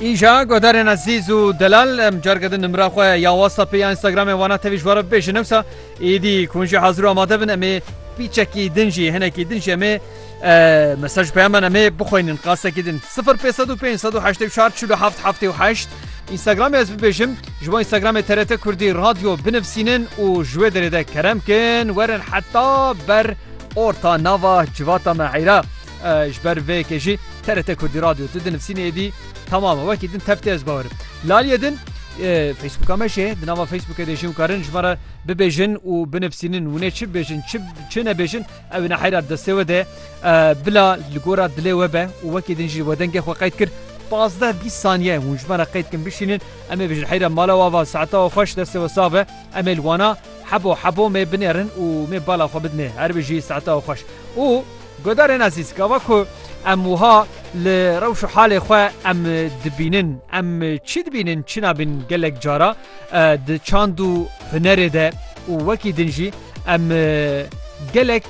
Îja godarên ezîz û delal em carke din nimra xwe ya WhatsAppê ya Instagramê wana tevî ji we re bibêjin newsa êdî ku hûn jî hazir û amade bin em ê pîçekî din jî hinekî din jî em ê mesaj peyaman em ê bixwînin qasekî din 0554 Instagramê ez bibêjim ji bo Instagramê TRT Kurdî radyo binivîsînin û ji wê derê de kerem kin werin heta ber orta nava civata me heyra. Ji ber vê yekê jî TRT Kurdî Radyo tu di nivîsînê êdî temam e. Wekî din tev tê ez bawerim. Laliyê din Facebooka me jê di nava Facebookê de jî hûn karin ji me re bibêjin û binivîsînin hûn ê çi bibêjin çi çi nebêjin ew ê neheyra destê we de bila li gora dilê we be û wekî din jî we dengê xwe qeyd kir pazdeh bîst saniye hûn ji me re qeyd kin bişînin em ê bijin heyra mala we ava saeta we xweş destê we sax be em ê li wana hebo hebo me binêrin û me bala xwe bidinê her bi jî saeta we xweş û Guhdarên ezîz, gava ku em wiha li rewş û halê xwe em dibînin, em çi dibînin çi nabîn gelek cara di çand û hunerê de û wekî din jî em gelek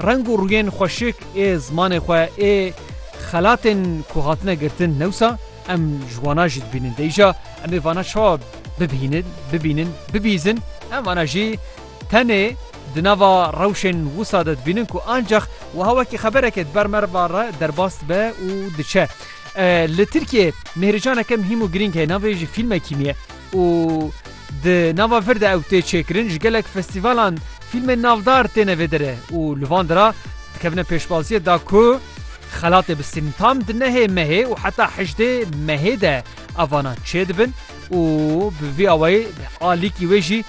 reng û rûyên xweşik ê zimanê xwe ê xelatên ku hatine girtin newsa em ji wana jî dibînin. Dê îja em ê vana çawa bibînin, bibînin, bibîzin? Em vana jî Tenê di nava rewşên wisa de dibînin ku ancax wiha wekî xeberekê di ber merva re derbas dibe û diçe. Li Tirkiyeyê mêhrîcaneke mihîm û girîng heye navê jî fîlmekî nî ye û di nava vir de ew tê çêkirin ji gelek festîvalan fîlmên navdar têne vê derê û li van dira dikevine pêşwaziyê da ku xelatê bistînin. Tam di nehê mehê û heta hejdê mehê de ev vanan çêdibin û bi vî awayî alîkî wê jî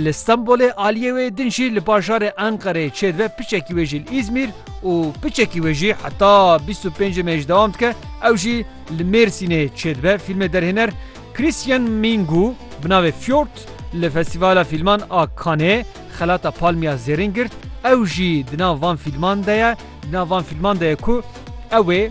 Li Stenbolê aliyê wê din jî li bajarê Enqerê çêdibe piçekî wê jî li Îzmîr û piçekî wê jî heta bîst û pêncê me jî dewam dike ew jî li Mêrsînê çêdibe. Fîlmê derhêner Christian Mingu bi navê Fjord li Festîvala Fîlman a Canê xelata Palmiya Zêrîn girt ew jî di nav van fîlman de ye di nav van fîlman de ye ku ew ê